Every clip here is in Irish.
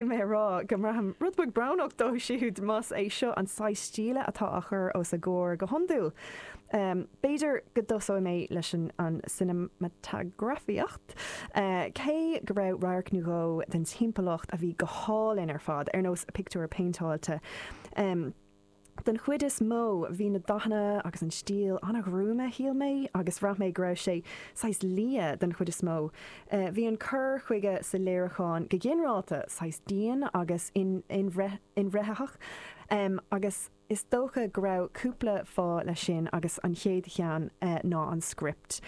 mé a rá go mbraithim rud beag brónach dó siúd más é seo an saghas stíle atá á chur os a gcomhair go hiondúil. B'fhéidir go dtosóidh mé leis an an cineamatagrafaíocht, cé go raibh radharc nó dhó den timpeallacht a bhí go hálainn ar fad, ar nós pictiúir péinteáilte. Den chuid is mó bhí na dathanna agus an stíl an-ghruama shíl mé agus bhraith mé go raibh sé saghas liath den chuid is mó. Bhí an cur chuige sa léiriúchán go ginearálta saghas dian agus inbhreithnitheach agus is dócha go raibh cúpla fáth leis sin agus an chéad cheann ná an script.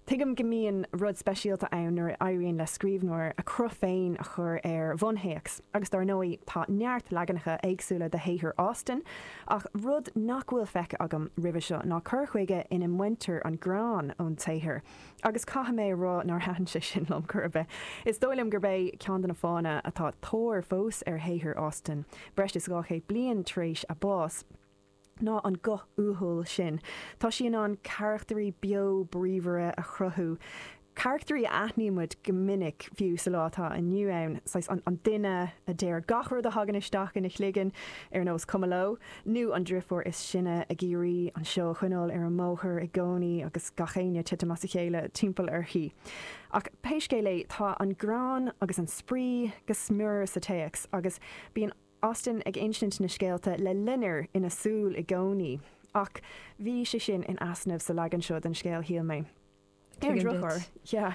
Tuigim go mbíonn rud speisialta ann nuair a éiríonn le scríbhneoir a chruth féin a chur ar bhunthéacs. agus dar ndóigh tá neart leaganacha éagsúla de shaothar Austen, ach rud nach bhfuil feicthe agam roimhe seo ná cur chuige ina mbaintear an greann ón tsaothar, agus caithfidh mé a rá nár thaitin sé sin liom chor ar bith. Is dóigh liom gurb é ceann de na fáthanna atá tóir fós ar shaothar Austen, breis is dhá chéad bliain tar éis a bás, ná an guth uathúil sin. Tá sí in ann carachtairí beo bríomhara a chruthú, carachtairí a aithnímid go minic fiú sa lá atá inniu ann, saghas an duine a deir gach rud a thagann isteach ina chloigeann, ar nós cuma leo, nó an driofúr is sine ag iarraidh an seó a choinneáil ar an mbóthar i gcónaí agus gach éinne titim as a chéile timpeall uirthi. Ach pé scéal é, tá an greann agus an spraoi go smior sa téacs agus bíonn. Austen ag insint na scéalta le loinnir ina súil i gcónaí. Ach bhí sé sin in easnamh sa leagan seo den scéal shíl mé. Ar an Tuigim duit. drochuair, yeah.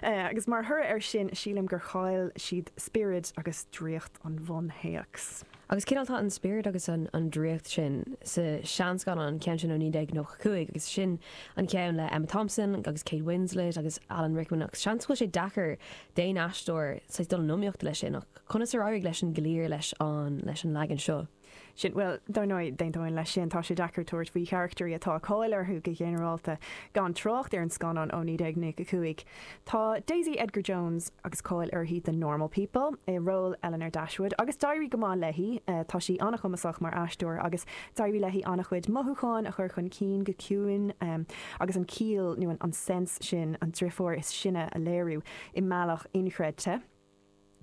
Agus mar thoradh ar sin sílim gur chaill siad spiorad agus draíocht an bhunthéacs. Agus cineál tá an spiorad agus an an draíocht sin sa seanscannán, an ceann sin ó 1995 agus sin an ceann le Emma Thompson agus Kate Winslet agus Alan Rickman ach seans go bhfuil sé deacair d'aon aisteoir saghas dul in iomaíocht leis sin ach Conas ar éirigh leis an gcliar leis an leis an leagan seo? sin? Bhuel, dar ndóigh, d'aontóinn leis sin. Tá sé deacair tabhairt faoi charachtairí atá cáil orthu go ginearálta, gan trácht ar an scannán ó 1995. Tá Daisy Edgar-Jones agus cáil uirthi do Normal People, i ról Elinor Dashwood, agus d'éirigh go maith léi. Tá sí an-chumasach mar aisteoir agus d'éirigh léi an-chuid mothúchán a chur chun cinn go ciúin agus an ciall nó an sense sin, an driofúr is sine a léiriú i mbealach inchreidte.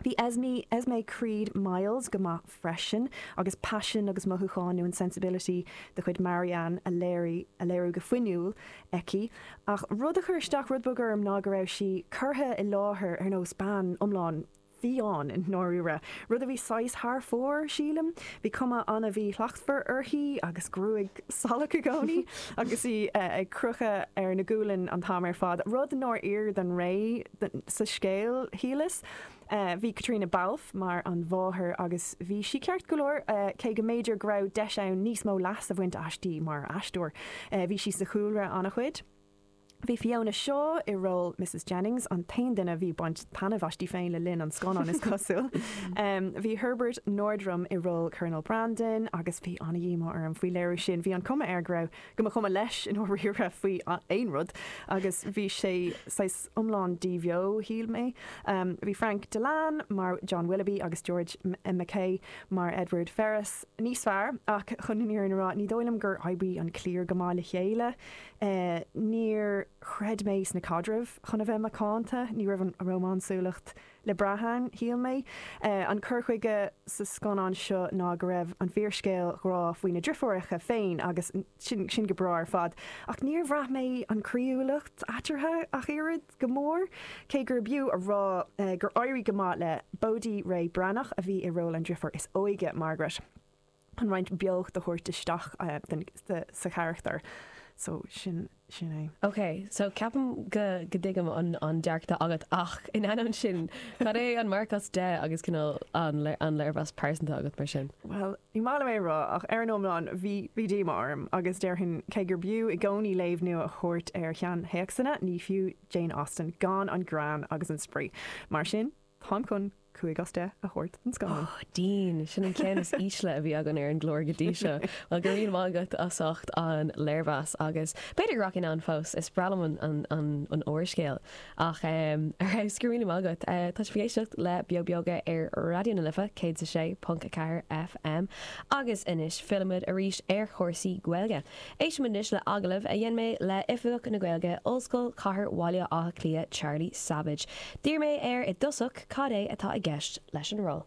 Bhí Esme, Esmé Creed-Miles go maith freisin agus paisean agus mothúcháin nó an sensibility de chuid Marianne a léirigh, a léiriú go fuinniúil aici. Ach rud a chuir isteach rud beag orm ná go raibh sí curtha i láthair ar nós bean iomlán fiáin i ndáiríre, rud a bhí saghas thar fóir, sílim. Bhí cuma an-mhíshlachtmhar uirthi agus gruaig salach i gcónaí agus í ag crochadh ar a gualainn an t-am ar fad, rud nár oir don ré. sa scéal, shíleas. Bhí Caitríona Balfe mar an mháthair agus bhí sí ceart go leor, cé go mb'fhéidir go raibh deis ann níos mó leas a bhaint aisti mar aisteoir. Bhí sí sa chúlra an-chuid. Bhí Fiona Shaw i ról Mrs Jennings an t-aon duine a bhí ag baint taitneamh aisti féin le linn an scannáin, is cosúil. Bhí Herbert Nordrum i ról Colonel Brandon agus bhí an-dhíomá orm faoi léiriú sin, bhí an cuma air go raibh, go mba cuma leis i ndáiríre faoi aon rud agus bhí sé saghas, iomlán díbheo, shíl mé. Bhí Frank Dillane mar John Willoughby agus George MacKay mar Edward Ferrars níos fearr ach chun an fhírinne a rá, ní dóigh liom gur oibrigh an cliar go maith le chéile. Níor chreid mé sna caidrimh, chun a bheith macánta. Ní raibh an rómánsúlacht le brath ann, shíl mé. An cur chuige sa scannán seo ná go raibh an fíorscéal grá faoi na driofúireacha féin agus sin go breá ar fad, ach níor bhraith mé an croíúlacht eatarthu ach oiread, go mór cé gurb fhiú a rá gur éirigh go maith le Bodhi Rae Breathnach a bhí i ról an driofúr is óige, Margaret. chun roinnt beocht a thabhairt isteach sa charachtar so, sin sin é. Ok so ceapaim go go dtuigim an dearcadh agat ach in ainneoin sin cad é an marc as 10 agus cineál an léirmheas pearsanta agat mar sin? Bhuel ní maith liom é a rá ach ar an iomlán bhí díomá orm agus déarfainn cé gur b'fhiú i gcónaí léamh nua a thabhairt ar sheanthéacsanna ní fiú Jane Austen gan an greann agus an spraoi mar sin Táim chun cúig as deich a thabhairt don scannán. Ó dian, sin an ceann is ísle a bhí againn ar an gclár go dtí seo. Bhuel, go raibh maith agat as ucht an léirmheas agus b'fhéidir go rachaidh mé ann fós, is breá liom an úrscéal. Ach em, ar fheabhas, go raibh míle maith agat. Tá sibh ag éisteacht le Beo Beoga ar Raidió na Life 106.4 FM agus anois fillimid arís ar chúrsaí Gaeilge. Éistimid anois le agallamh a dhein mé le Oifigeach na Gaeilge Ollscoil Chathair Bhaile Átha Cliath Charlie Savage. D'iarr mé air i dtosach cad é atá i gceist leis an ról.